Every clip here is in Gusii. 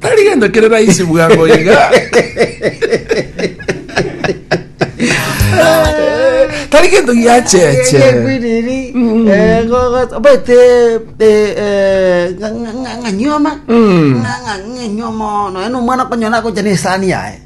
Tari gento kere raisi bwango iga. Tari gento giacheche. Ekwiriri, eh, go- go- obaite eh, eh, nga- nga- nga- ng'anyoma Mm. Nga- nga- ng'anyoma nonya nomwana okonyora agocha na esani yaye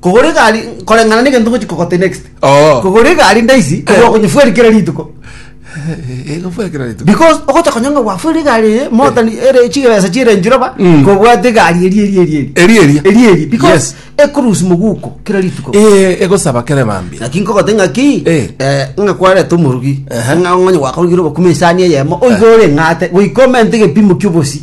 kogora egari koreng'ana na egento ngochi kogote next Oo. kogora egari ndaisi Eh. okonyefweri kera rituko Egofwa kera rituko. because ogocha konya ng'a gwafwere egari eye motani ere chigesa chiere nchiroba Mm. kobwate egari eri eri eri eri Eri eri. eri eri because Yes. ekurusi moguko kera rituko Eh, egosaba kere bambi. lakini kogote ng'aki Eh. eh, ng'a kwareta omorugi Aha. ng'a ng'onye gwakorogire obokuma esani eyemo oiga oreng'ate goika omente egepimo kia obosi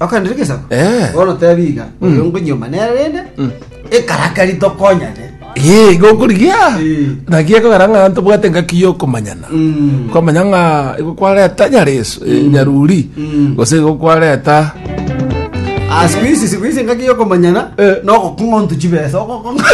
Okandire gesaku. Eh. Bono tebi iga. Oyo ngonyoma nere rende. Ekaraka ritokonyane. Ee, igo okorigia Eh. naki ekogera ng'a ntobwate engaki ya okomanyana Mm. kwamanya ng'a igo kwareta nyareso eh, nyaruri Mm. gose igo kwareta Ah, siku hizi siku hizi ngaki yokomanyana Eh. nogokung'a ontu chibesa ogokong'a